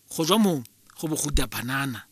go jwa mong go bo go banana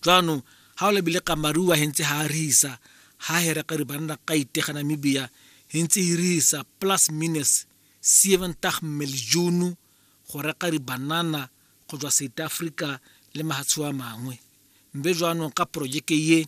jaanong ga o lebile kamaruwa hentse ha a risa ha hera ka re banna ka itega namibia hentse e risa plus minus 70 milijunu go reka re banana go jwa south africa le mahatsho a mangwe mbe jaanong ka projeke ye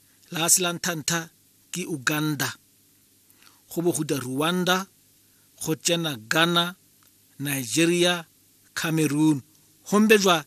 la se la nthantha ke uganda go bo go rwanda go tsena ghana nigeria cameroon gombe jwa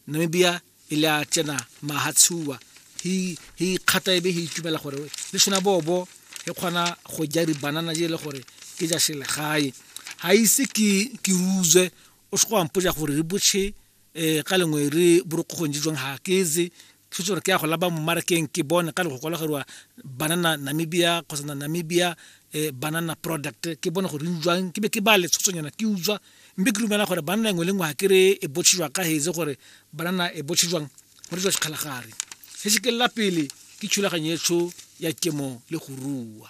namibia e le a tsena mahatshuwa hi hi khata ebe hi itumela gore le sona bobo e kgona go ja dibanana je le gore ke ja selegae ga ise ke ke ruzwe o se go ampotsa gore re botšhe um ka lengwe re borokgong je jwang ga keze Thuse gore ke ya go laba mo marakeng ke bone ka le go kwalageriwa banana namibia kgotsa na namibia eh, banana product ke bone gore utswang ke be ke ba letshosonyana ke utswa mme ke lumela gore banana engwe le ngwe ga ke re e botshejwa ka hetse gore banana e botshejwang go retswa sekgalagare se se kelela pele ke thulaganyo etsho ya temo le go rua